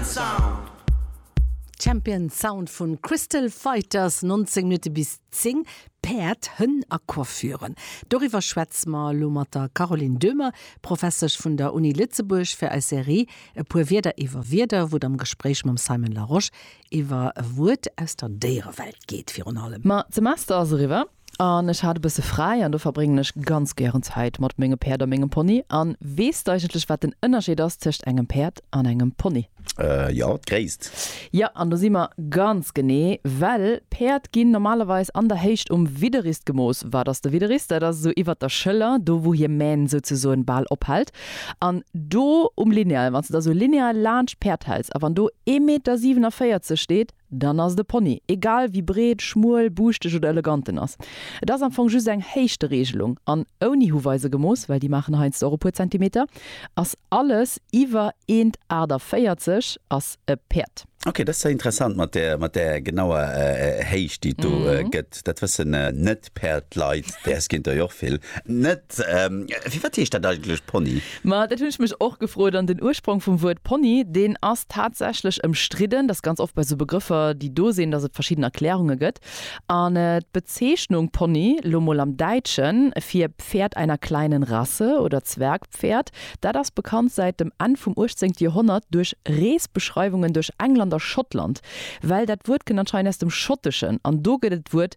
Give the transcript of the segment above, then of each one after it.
Sound. Champion Sound vu Crystal Fighters, 19 Minutte bis 10, Päerd, Hënn a Coiffuren. Doriwwer schwätze mer elo mat der Caroline Döhmer, Professesch vun der Uni Lëtzebuerg fir eis Serie E puer Wierder iwwer Wierder, wou et am Gespréich mam Simon Larosche iwwer e Wuert aus der Déierewelt geet virun allem. Ma d'Semester ass eriwwer. An ech hat e bësse fräi an do verbréngen ech ganz gären Zäit mat menge Päerd a mengem Pony. An weess de eigentlech, wat den Ënnerscheed ass tëscht engem Päerd an engem Pony? Jo, d'Gréisst. Jo, an do si mer ganz genee, well Päerd ginn normalerweis an der Héicht um Widderrist gemooss. Wat ass de Widderrist? Dat ass esou iwwert der Schëller, do wou hir Mähn souzesoen bal ophält. An do um Lineal, wann s de da esou lineal laanscht d'Päerd häls a wann do ee Meter 47 steet, Dann ass et e Pony, egal wéi breet, schmuel, buuschteg oder elegant en ass. Et ass am Fong just eng Héichtereegelung, an ouni Huweiser gemooss, well déi maachen heiansdo och e puer Zentimeter, ass alles iwwer 1,48 m ass e Päerd. Ok, dat ass interessant mat där genauer Héicht déi et do gëtt, dat wëssen net. D'Päerd leit, däers kinnt der jo och vill net. Firwat heescht dat eigentlech Pony? Ma dat hunn ech mech och gefrot. An den Ursprong vum Wuert Pony, deen ass tatsächlech ëmstridden. Dass ganz oft bei esou Begrëffer, déi do sinn, dass et verschidden Erklärunge gëtt. An d'Bezeechnung Pony, lo mol am Däitschen, fir Pferd einer kleinen Rasse oder Zwergpferd, dat ass bekannt säit dem Enn vum uechtzéngte Joerhonnert duerch Reesbeschreiwungen duerch England a Schottland. Well dat Wuert kënnt anscheinend aus dem Schotteschen an do gëtt et d'Wuert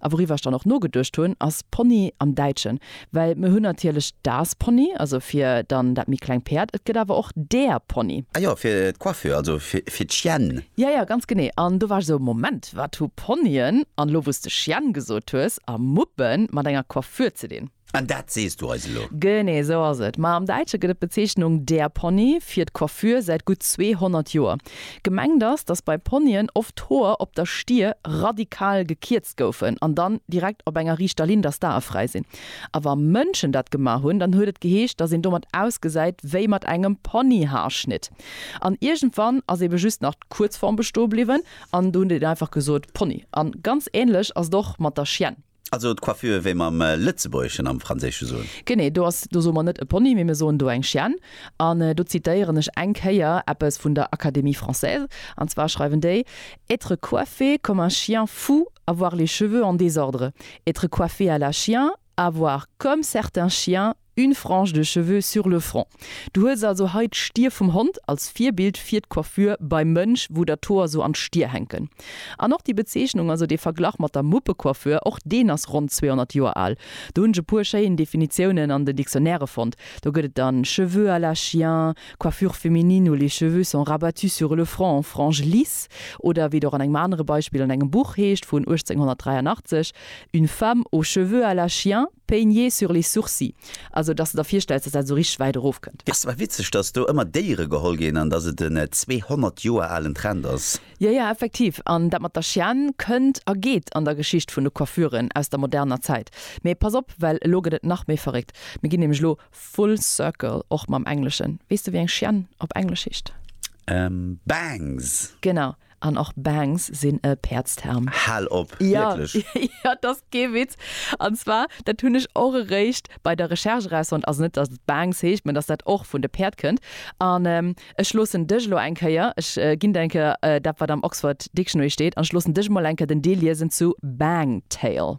A wouriwwer ech dann och nogeduecht hunn, ass Pony am Däitschen. Well mir hunn natierlech das Pony, also fir dann dat méi kleng Päerd, et gëtt awer och der Pony. Ah jo, fir d'Coiffure, also fir d'Chienne. Jo, jo, ganz genee. An do war ech esou, Moment, wat hu Ponyen, an elo wou s de Chienne gesot hues, a Muppe mat enger Coiffure ze dinn? An dat sees du eis elo? Genee esou ass et. Ma am Däitsche gëtt et d'Bezeechnung der Pony fir d'Coiffure säit gutt 200 Joer. Gemengt ass, datt bei Ponyen oft d'Hoer op der Stier radikal gekierzt goufen an dann direkt op enger riichter Linn, datt d'Ae fräi sinn. A wa Mënschen dat gemaach hunn, dann huet et geheescht, datt een domat ausgesäit wéi mat engem Ponyhaarschnitt. An iergendwann ass ebe just nach d'Kuerzform besto bliwwen an do huet een einfach gesot Pony. A ganz änlech ass et och mat der Chienne. Also d'Coiffure wéi mer am Lëtzebuergeschen am Franséische soen. Genee, do ass, do soe mer net e Pony, mee mir soen do eng Chienne. An do zitéieren ech eng Kéier eppes vun der Académie française, an zwar schreiwen déi, Être coiffé comme un chien fou, avoir les cheveux en désordre. Être coiffé à la chien, avoir, comme certains chiens, Une frange de cheveux sur le front. Du hues also hei d'Stier vum Hond als Virbild fir d'Coiffure beim Mënsch, wou der d'Hoer sou an d'Stier hänken. An och déi Bezeechnung, also dee Verglach mat der Muppecoiffure, och deen ass ronn 200 Joer al. Do hunn ech e puer schéin Definitiounen an den Dictionnairë fonnt. Do gëtt et dann cheveux à la chien, coiffure féminine où les cheveux sont rabattus sur le front en franges lisses, oder wéi et och an engem anere Beispill an engem Buch heescht vun 1883, Une femme aux cheveux à la chien peignés sur les sourcils, also dass de der virstells, dass dat esou richteg wäit erof kënnt. Ass awer witzeg, dass do ëmmer Déiere geholl ginn an dass et en 200 Joer alen Trend ass. Jo, jo, effektiv. An dat mat der Chienne kënnt a geet an der Geschicht vun de Coiffuren aus der moderner Zäit. Mee pass op, well elo gëtt et nach méi verréckt. Mir ginn nämlech elo full circle, och mam Engleschen. Weess de wéi eng Chienne op Englesch heescht? Bangs! Genau. an och Bangs sinn e Päerdsterm. Hal op! Wierklech? Jo, jo, et ass kee Witz. An zwar, dat hunn ech och eréischt bei der Recherche erausfonnt, also net, datt et Bangs heescht, mä datt dat och vun de Päerd kënnt. An ech loossen dech elo eng Kéier, ech ginn der eng Kéier dat, wat am Oxford Dictionary steet, an ech loossen dech emol eng Kéier den Deel liesen zu Bang Tale.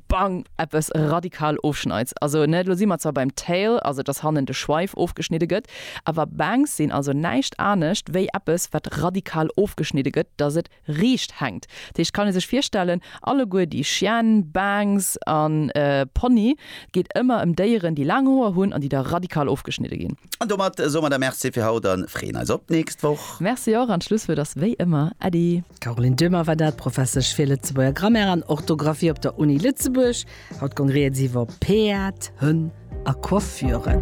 Bang! Eppes radikal ofschneids. Also ne, lo si mer zwar beim Tail, also dass hannen de Schweif ofgeschnidde gëtt, awer Bangs sinn also näischt anescht wéi eppes wat radikal ofgeschnidde gëtt, dass et riicht hänkt. Dat heescht, kann ee sech virstellen, alleguer déi Chienne, Bangs a Pony, et geet ëmmer ëm Déieren déi laang Hoer hunn an déi da radikal ofgeschnidde ginn. An domat soe mer da Merci fir haut a freeën eis op d'nächst Woch. Merci och, an d'Schlusswuert ass wéi ëmmer Äddi. D'Caroline Döhmer war dat, Professesch fir Lëtzebuerger Grammaire an Orthografie op der Uni Lëtzebuerg. Haut gong rieds iwwer Peat, Hënn a Coiffuren.